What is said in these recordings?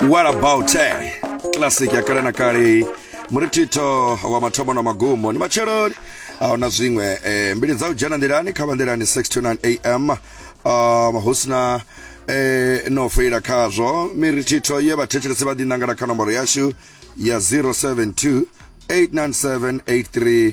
what about eh? classic ya kale na kale muritito wa mathomo na magumo ni matsheloni ahuna zwiṅwe eh, mbili dza u dzhena nḓilani kha vanḓilani 629 am um, hu sina eh, no foila khazwo miritito ye vhathetshelesi vha ḓinangela kha nomboro yashu ya 072 897 83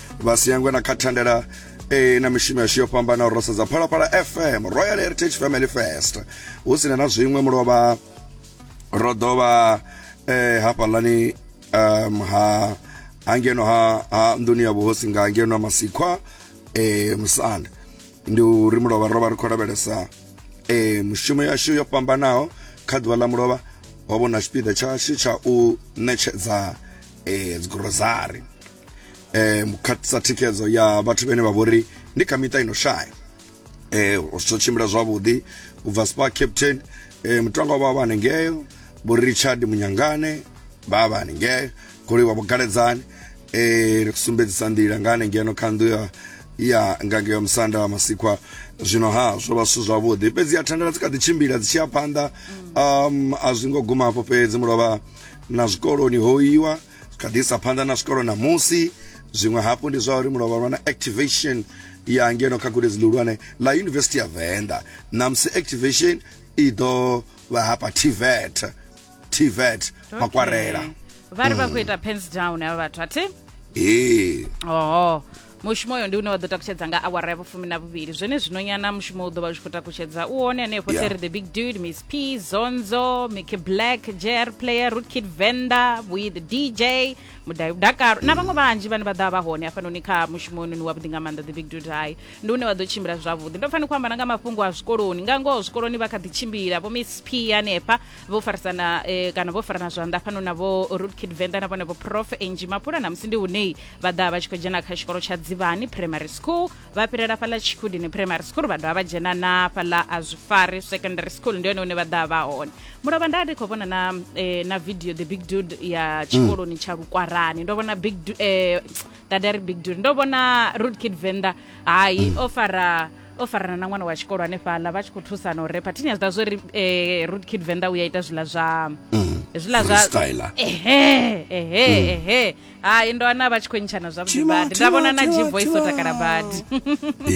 vha si yangwe na kha thandela e na mishumo yashu yo fhambanaho ro sedza phalaphala fm royal heritage family fest hu sina na zwiṅwe mulovha ro ḓo vha eh, hafhaḽani um, ha hangeno ha, ha nḓuni ya vhuhosi nga ngeno masikhwa eh, musanda ndi uri mulovha ro vha ri khou lavhelesa eh, mushumo yashu yo fhambanaho kha ḓuvha ḽa mulovha ho vhona tshipiḓa tshashu tsha u ṋetshedza eh, dzigurozari eh khatisa thikhedzo ya vhathu vhene vha vhori ndi kha miṱa ino shaya eh zwo tshimbila zwavhuḓi ubva spa captain eh mutangwa vha vha hanengeo bo Richard Munyangane vha vha hanengeo goloi wa vhugaledzani eh ri sumbedzisa nḓila nga hanengeno kha nnḓu ya ya ngange ya musanda wa masikwa zwino ha zwo vha zwithu zwavhuḓi fhedzi ya thandela dzi kha ḓi tshimbila dzi tshi ya phanḓa um a zwi ngo guma afho fhedzi mulovha na zwikoloni ho iwa kha ḓi isa phanḓa na zwikolo ṋamusi zwiṅwe hafhu ndi zwa uri mulovha lwa na activation ya ngeno kha gudedzi ḽihulwane ḽa yunivesithi ya venḓa ṋamusi activation i ḓo vha hapa tvet tvet makwarela vha ri vha khou ita pens down avha vhathu athi ee oho mushumo uyo ndi une wa ḓo takutshedza nga awara ya vhufumi na vhuvhili zwone zwino nyana mushumo u ḓo vha u tshi khou takutshedza u hone hanefho yeah. seri the big dude miss p zonzo mickey black jr player rootkid venda vhuyi the dj mudai mudakaro na vhaṅwe vhanzhi vhane vha ḓa vha hone hafhanoni kha mushumo ononi wavhuḓi nga maanḓa the big dude hai ndi une wa ḓo tshimbila zwavhuḓi ndo fanela khou ambana nga mafhungo a zwikoloni nga ngoho zwikoloni vha kha ḓi tshimbila vho miss p hanefha vho farisana eh, kana vho farana zwanḓa fhano na vho roodkid venḓa na vhone vho prof angi mapula na musi ndi hunei vha ḓa vha tshi khou dzhena kha tshikolo tsha dzivhani primary school vha fhirela fhaḽa tshikudini primary school vha dovha vha dzhena na fhaḽa a zwifari secondary school ndi hone hune vha ḓa vha hone mulovha nda ndi khou vhona na eh, na video the big dude ya tshikoloni tsha lukwarani ndo vhona big du- eh, dadari big dude ndo vhona roodkid venḓa hai o fara o farana na ṅwana wa tshikolo hanefhaḽa vha tshi khou thusana u repa thini ya zwiḓa zwori eh, root kid venḓa u ya ita zwiḽa zwa zwiḽa zwa freestyler. ehe ehe ehe hai ndo ana vha tshi khou ntshana zwavhuḓi Tima, badi nda vhona na tima, tima, gvoice o tima. takala badi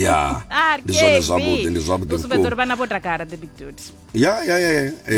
ya Ah, ndi zwone Kevi. zwavhuḓi ndi zwavhuḓi U sumbedza uri vhukuma vhana vho takala the big dude ya ya ya ya Eh,